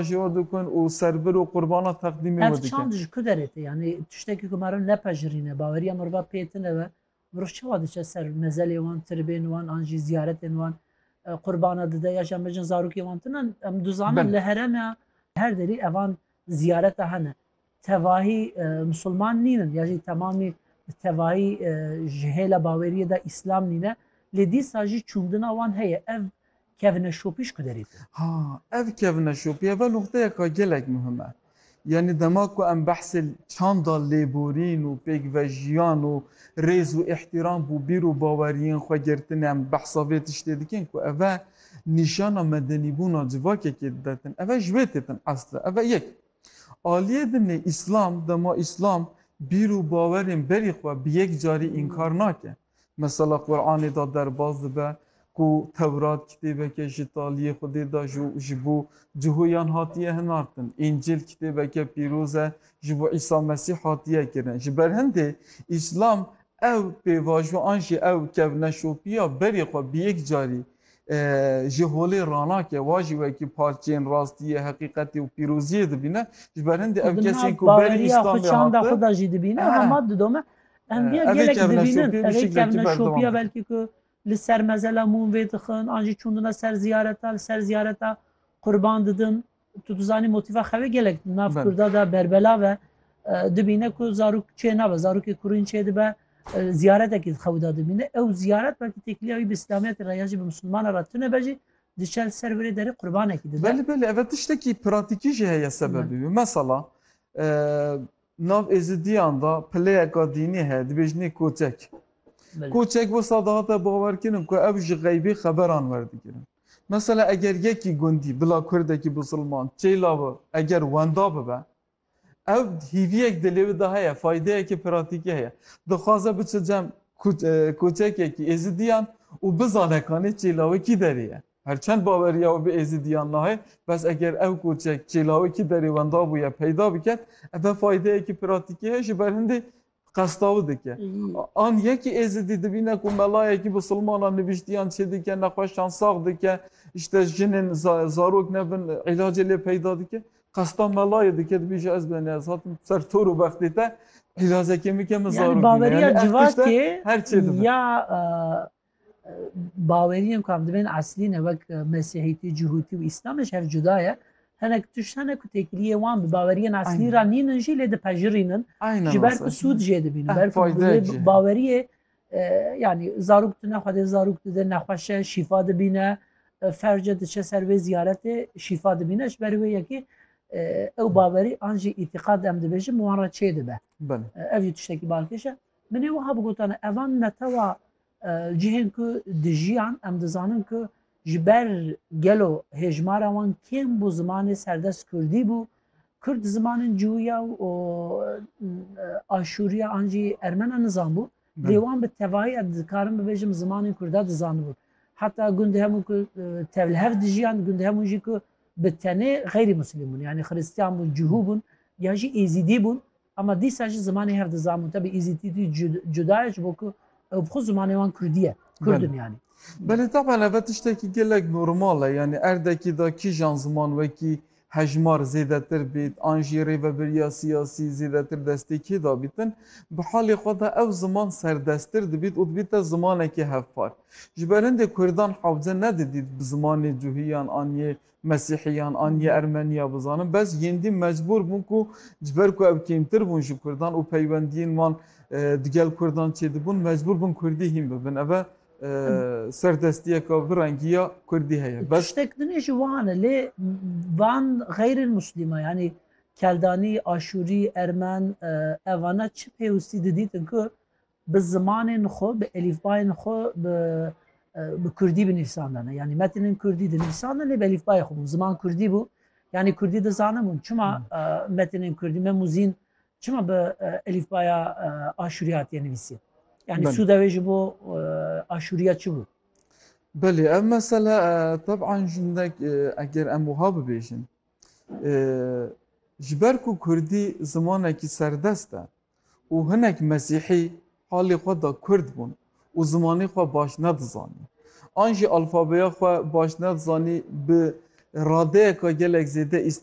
Ji we dikin û serbir û qurbana teqdîmê we Ev dikin. çand ji ku derê tê? Yanî tiştekî ku meriv nepejirîne, baweriya meriva pê tune be, meriv çawa diçe ser mezelê wan, tirbên wan an jî ziyaretên wan, qurbana dide ya jî em bêjin zarokê wan tune? Em dizanin Belê. li herêma her derî evan ziyareta hene. tevahî misilman nîn in ya jî temamî bi tevahî ji hêla baweriyê de îslam nîn e lê dîsa jî çûndina wan heye ev kevneşopî ji ku derê tê? Ha ev kevneşopî ev e nuqteyeka gelek muhim e. Yanî dema ku em behsê çanda lêborîn û pêkvejiyan û rêz û îhtîram bo bîr û baweriyên xwe girtinê em behsa vê tiştê dikin ku ev e nîşana medenîbûna civakekê didetin ev e ji wê têtin esli ev e yek. Aliyê din ê Îslam, dema Îslam bîr û bawerên berî xwe bi yek carî înkar nake. Mesela Quranê da derbas dibe ku Tewrat kitêbeke ji taliyê Xwedê da ji ji bo cihoyan hatiye hinartin, Încîl kitêbeke pîroz e ji bo Îsa Mesîh hatiye kirin. Ji ber hindê Îslam ew pêvajo an jî ew kevneşopiya berî xwe bi yek carî Ji holê ranake wa jî wekî parçeyên rastiyê, heqîqetê û pîroziyê dibîne. Ji ber hindê ev kesên ku berî Îslamê hatin. Çanda xwe de jî dibîne hema didome. Em vê gelek dibînin. Evê kevneşopiya belkî ku li ser mezela mûm vê dixin an jî çûndine ser ziyareta li ser ziyareta qurban didin. Tu dizanî motîfa xevê gelek nav Kurda de berbela ve dibîne ku zarok çê nabe zarokê kurîn çê dibe ziyaretekî xewda dibîne ew ziyaret belkî têkiliya wî bi îslamiyetê re ya jî bi misilmana re tune be jî diçel ser virê derê qurbanekî dibe. Belê belê ev tiştekî pratîkî jî heye sebebî wî. Mesela Nav Êzidiyan de pileyeka dînî heye dibêjinê Koçek. Koçek wisa dihate bawerkirin ku ew ji xeybê xeberan werdigirin. Mesela eger yekî gundî bila kurdekî bisilman çêla bi eger wenda bibe ew hîviyek dilê wî de heye faydeyekê pratîkî heye. Dixwaze biçe cem koçekekî Êzidiyan û bizane kanê çêla wê kî derê ye. Her çend baweriya wî bi Êzîdiyan nayê, bes eger ev koçek çê lawikî derê wenda bûye peyda biket, eve faydeyekî pratîkî heye ji ber hindê qesta wî dike. An yekî Êzîdî dibîne ku melayekî bi silmanan nivîştiyan çê dike, nexweşan sax dike, îşte jinên zarok ne bin îlacê lê peyda dike. Qesta melayê dike dibêje ez benê ez hatim ser tor û bextê te îlacekê bike min zarok bîne. Yani baweriya civakê ya Baweriyên ku em dibên eslî ne wek Mesîhîtî, Cihûtî û Îslam ji hev cuda ye. Hinek tişt hene ku têkiliyê wan bi baweriyên eslî re nîn in jî lê dipejirîn in. Ji ber ku sûd jê dibîn. Ber ku baweriyê yanî zarok tune xwe dê zarok dide nexweşe şîfa dibîne. Ferce diçe ser wê ziyaretê şîfa dibîne ji ber wê yekê ew bawerî an jî îtîqad em dibêjin wan re çê dibe. Ev jî tiştekî balkêş e. Min ê wiha bigotane, evan netewa cihên ku dijiyan em dizanin ku ji ber gelo hêjmara wan kêm bû zimanê serdest kurdî bû, kurd zimanên cuwiya û aşûriya an jî ermena nizanbû, lê wan bi tevahiya dikarin bibêjim zimanên kurda dizanibûn. Heta gundê hemû ku tevli hev dijiyan, gundê hemû jî ku bi tenê xeyrî muslim bûn, yanî xiristiyan bûn, cuhû bûn, ya jî êzîdî bûn, Hema dîsa jî zimanê her di zamonte bi Îzîtîtî cuda ye ji bo ku ew bi xwe zimanê wan Kurdî ye. Kurd in yanî. Belê taban eve tiştekî gelek normal e. Yanî erdekî de kîjan ziman wekî hejmar zêdetir bêt an jî rêvebiriya siyasî zêdetir destê kê dabît in, bi halê xwe de ew ziman serdesttir dibît û dibîte zimanekî hevpar. Ji ber hindê Kurdan hewce nedidît bi zimanê cuhîyan an yê Mesîhiyan an yê Ermeniya bizanin bes yêndî mecbûr bûn ku ji ber ku ew kêmtir bûn ji Kurdan û peywendiyên wan digel Kurdan çêdibûn mecbûr bûn Kurdî hîn bibin. Ev e serdestiyeka bi rengî ya Kurdî heye. Bes. Tiştek din jî wan e lê van xeyrên Muslîman yanî Keldanî, Aşûrî, Ermen evane çi pêwistî didîtin ku bi zimanên xwe, bi elîfbayên xwe bi bi kurdî binivîsandine. Yanî metinên kurdî dinivîsandin lê bi elîfbayê xwe bûn. Ziman kurdî bû. Yanî kurdî dizanibûn. Çima hmm. metinên kurdî me muzîn çima bi elîfbaya aşûrî hatiye nivîsî? Yanî sûda wê ji bo aşûriya çi bû? Belê ev mesele teban jindek eger em wiha bibêjin ji ber ku kurdî zimanekî serdest e û hinek Mesîhî halê xwe da Kurd bûn û zimanê xwe baş nedizanî. An jî alfabeya xwe baş nedizanî bi radeyeka gelek zêde îstifa